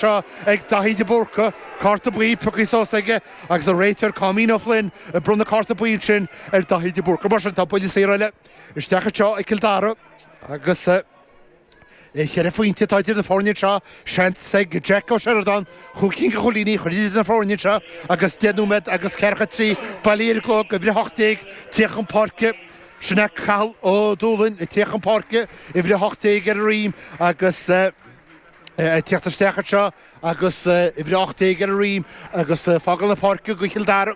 seo ag Daithí de Búrca, cárta buí, piocthaí suas aige agus an réiteoir Caymon Ó Floinn ag bronnadh cárta buí ansin ar Daithí de Búrca. Mar sin tá buille saor eile isteach anseo ag Cill Dara agus cheithre phointe atá idir na foirne anseo. Seans ag Jack Ó Seireadáin chúig cinn de chúilíní a chur idir na foirne anseo agus deich nóiméad agus ceathracha a trí bailí ar an gclog uimhir a hocht déag ag tíocht chun páirce. Sin é Cathal Ó Dúlaing ag tíocht chun páirce uimhir a hocht déag ar a dhroim agus Ag tíocht isteach anseo agus uimhir a 18 ar a dhroim agus ag fágáil na páirce go Cill Dara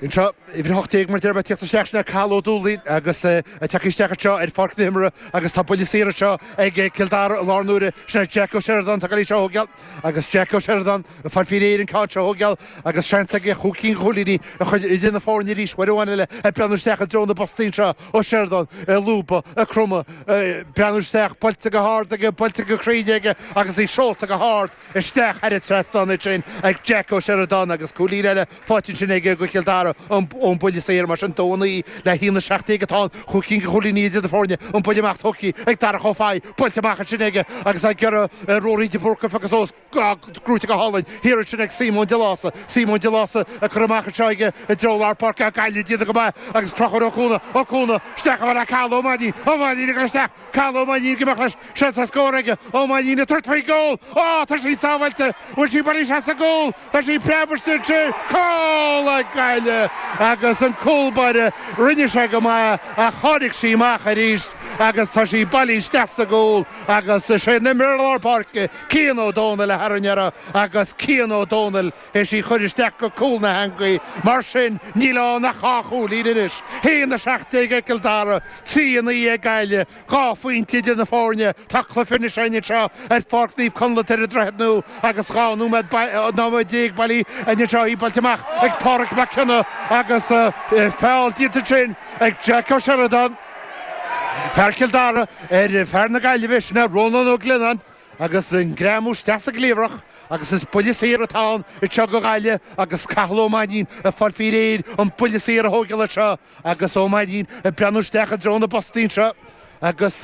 anseo, uimhir a 18 mar deirtear. Ag tíocht isteach sin é Cathal Ó Dúlaing agus é ag teacht isteach anseo ar pháirc na himeartha agus tá buille saor anseo ag Cill Dara i láthair na huaire. Sin é Jack Ó Seireadáin, atá ag goil í seo a thóigeáil agus Jack Ó Seireadáin ag fáil faoi réir an ceann seo a thóigeáil agus seans aige chúig cinn de chúilíní a chur idir na foirne arís, uair amháin eile ag breathnú isteach i dtreo na bpostaí anseo. Ó Seireadáin ag lúbadh, ag cromadh, ag breathnú isteach, buailte go hard aige, buailte go cruinn aige agus í seolta go hard isteach thar an trasnán ansin ag Jack Ó Seireadáin agus cúilín eile faighte ansin aige do Chill Dara ón mbuille saor. Mar sin dó a naoi le haon a 17 atá ann, chúig cinn de chúilíní idir na foirne, an buille amach tógtha ag Darach Ó Fathaigh, buailte amach ansin aige agus ag iarraidh Ruairí de Búrca agus ós gnóite go hálainn thiar ansin ag Simon de Lása. Simon de Lása curtha amach anseo aige i dtreo lár páirce ach Gaillimh ag déanamh go maith agus Conchúr Ó Cuana. Ó Cuana isteach i mbealach Cathal Ó Mainnín. Ó Mainnín ag dul isteach. Cathal Ó Mainnín amach leis seans ar scór aige. Ó Mainnín ag tabhairt faoin gcúl. Ó! Tá sí sábháilte. Bhfuil sí bailí isteach sa gcúl? Tá sí preabtha isteach ansin. Cúl ag Gaillimh agus an cúl báire rinne sé go maith ach tháinig sí amach arís agus tá sí bailí isteach sa gcúl agus is é an t-imreoir lár páirce Cian Ó Dónaill a tharraing uirthi agus Cian Ó Dónaill is é a chuir isteach go cúl na heangaí. Mar sin níl ann ach dhá chúilín anois, haon a seacht déag ag Cill Dara, trí a naoi ag Gaillimh. Dhá phointe idir na foirne, tá cluiche anois againn anseo ar Pháirc Naomh Conleth ar an Droichead Nua agus dhá nóiméad déag bailí anseo í buailte amach ag Pádraic Mac Cionnaith agus feall déanta ansin ag Jack Ó Seireadáin, fear Chill Dara, ar fear na Gaillimhe, sin é Rónán Ó Gleannáin. Agus an greamú isteach sa gcliabhrach agus is buille saor atá ann anseo ag Gaillimh agus Cathal Ó Mainnín ag fáil faoi réir an buille saor a thóigeáil anseo agus Ó Mainnín ag breathnú isteach i dtreo na bpostaí anseo agus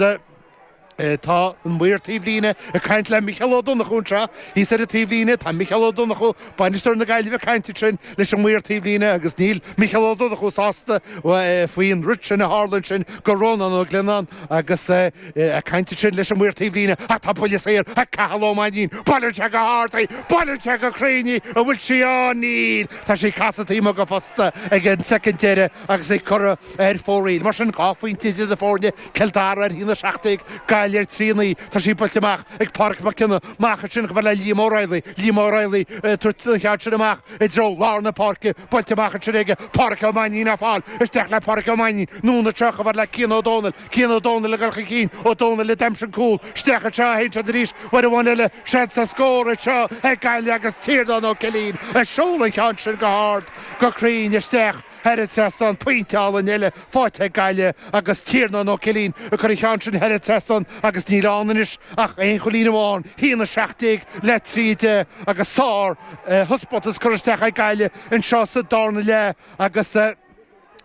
tá an maor taobh líne ag caint le Micheál Ó Donnchú anseo thíos ar an taobh líne, tá Micheál Ó Donnchú Bainisteoir na Gaillimhe ag caint ansin leis an maor taobh líne agus níl Micheál Ó Donnchú sásta faoin rud sin a tharla ansin do Rónán Ó Gleannáin agus é ag caint ansin leis an maor taobh líne ach tá buille saor ag Cathal Ó Mainnín. Buaileann sé go hard í! Buaileann sé go cruinn í! An bhfuil sí ann? Níl! Tá sí ag casadh taobh amuigh den phosta ag an soicind deireadh agus é curtha ar fóraoil. Mar sin dhá phointe idir na foirne. Cill Dara ar haon a seacht déag, Gaillimh ar trí a naoi. Tá sí buailte amach ag Pádraic Mac Cionnaith, amach ansin chomh fada le Liam Ó Raghallaigh. Liam Ó Raghallaigh ag tabhairt an cheann sin amach i dtreo lár na páirce. Buailte amach ansin aige Pádraic Ó Mainnín á fáil. Isteach le Pádraic Ó Mainnín. Anonn anseo chomh fada le Cian Ó Dónaill. Cian Ó Dónaill ag dul chun cinn. Ó Dónaill a d'aimsigh an cúl. Isteach anseo a théann siad arís, uair amháin eile. Seans ar scór anseo ag Gaillimh agus Tiarnán Ó Cillín ag seoladh an cheann sin go hard, go cruinn isteach. Thar an trasnán pointe álainn eile faighte ag Gaillimh agus Tiarnán Ó Cillín ag cur an cheann sin thar an trasnán agus níl ann anois ach aon chúilín amháin, haon a seacht déag le trí a deich agus sár thaispeántas curtha isteach ag Gaillimh anseo sa dárna leath agus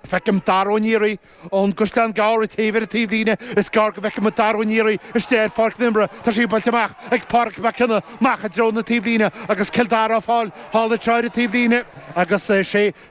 feicim Dara Ó Nearaí ón gCaisleán Gearr ag téamh ar an taobh líne, is gearr go bhfeicfidh muid Dara Ó Nearaí istigh ar pháirc na himeartha, tá sé buailte amach ag Pádraic Mac Cionnaith amach i dtreo na taobh líne agus Cill Dara á fáil thall anseo ar an taobh líne agus sé